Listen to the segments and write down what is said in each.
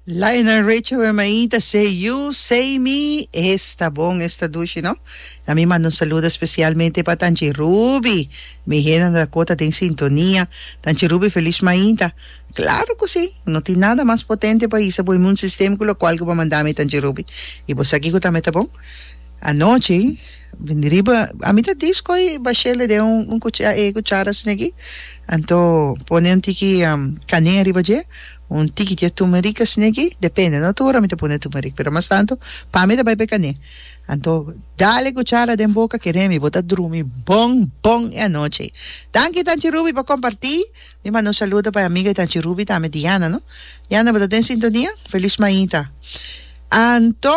La e nan recha we maí ta sey yu, sey mi, es ta bon, es ta dushi no. La mi manda un saludo especialmente pa Tanchi Ruby, mi henda ta cota den sintonia. Tanchi Ruby feliz mainta. Claro cu si, no tin nada mas potente pa hisa bo inmun system cu locual cu bo manda mi Tanchi Ruby. Y bo sa kico tambe ta bon? Anochi bindi riba, ami ta dish coy bashele den un cuchara asina aki, anto pone un tiki canea riba dje, Un tiki di e tumerik asina aki, depende, no tur ora mi ta pone tumerik, pero mas tantu pa mi ta bai pa e kané. Anto dal e kuchara den boka ke remi bo ta drumi bon bon e anochi. Danki Tanchi Rubi pa kompartí, mi manda un saludo pa e amiga di Tanchi Rubi tambe Diana no. Diana bo ta den sintonia? Felis mainta. Anto.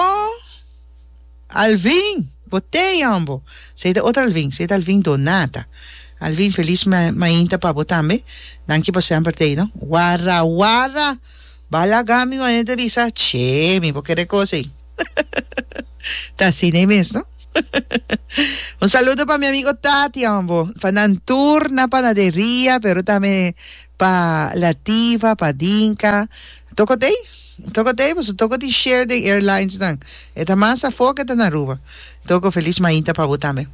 Alvin! Bo te yambo! Sa e ta otro Alvin, sa e ta Alvin Donata. Alvin, felis ma mainta pa bo tambe. Danki pa semper tei no. Warra, warra! Ba laga mi mane ta bisa, Che, mi bo kere kos ei. Ta sin'ei mes no. Un saludo pa mi amigo Tat yambo, pa nan tur na panaderia, pero tambe pa Lativa, pa Dinka. Tokotei. Toco t'ey, boso toco di share den airlinesnan. E ta mas afó ke ta na Aruba. Toco Feliz Mainta pa bo tambe.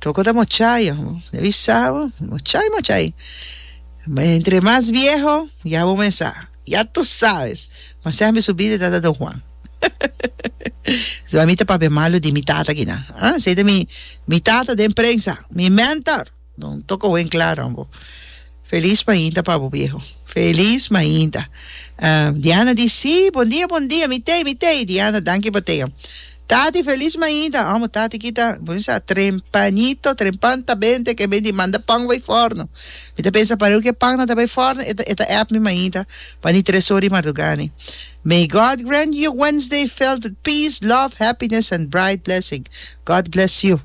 Toco ta mochay, bo ta bi sa bo, mochay mochay. Entre mas vieho, ya bo mesa, ya tu sabes. Ma sempe su bida ta ta Don Juan. Ami ta papia malo di mi tata kinan. Esey ta mi tata den prensa, mi mentor. Don toco wen claro an bo. Feliz mainta pa bo viejo. Feliz mainta. Diana di si, bon dia bon dia mi tei mi tei Diana danki pa tei an. Tati feliz mainta amo tati kita bo tin sa trempanito trempan ta ben te ke ben di manda pan bai forno mi ta pensa parew ke pan nan ta bai forno e ta app mi mainta pa ni tres ora di marduga ni May God grant you a Wednesday filled with peace, love, happiness and bright blessing God bless you.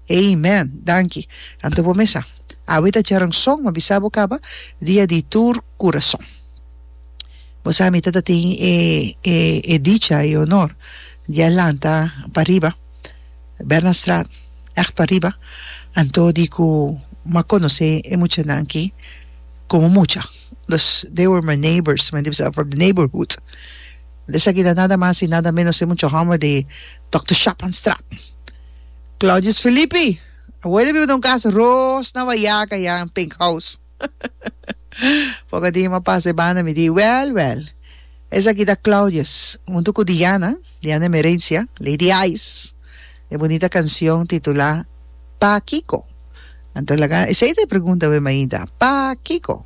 Amen! Danki. Anto bo mesa. Awe ta Charanson, ma bisa bo caba dia di tur curason. Bo sa mi ta ta tin e e e dicha, e honor di a lanta pa riba Bernardstraat, echt pa riba, anto di cu m'a conoce e muchanan ki como mucha. Dus they were my neighbours, men di bisa from the neighbourhood. Esaki ta nada mas y nada menos e mucha homber di Dokter Shaphanstraat. Claudius Filipi, Abuela mi a bata un kas ros na Bayaca ya, un pink house. Poco dia mi a pasa e banda mi di, Wel, wel, esaki ta Claudius huntu cu Diana, Diana Emerencia, Lady Ice, e bunita cancion titula Pa kico? Anto laga esey ta e pregunta wen mainta, Pa kico?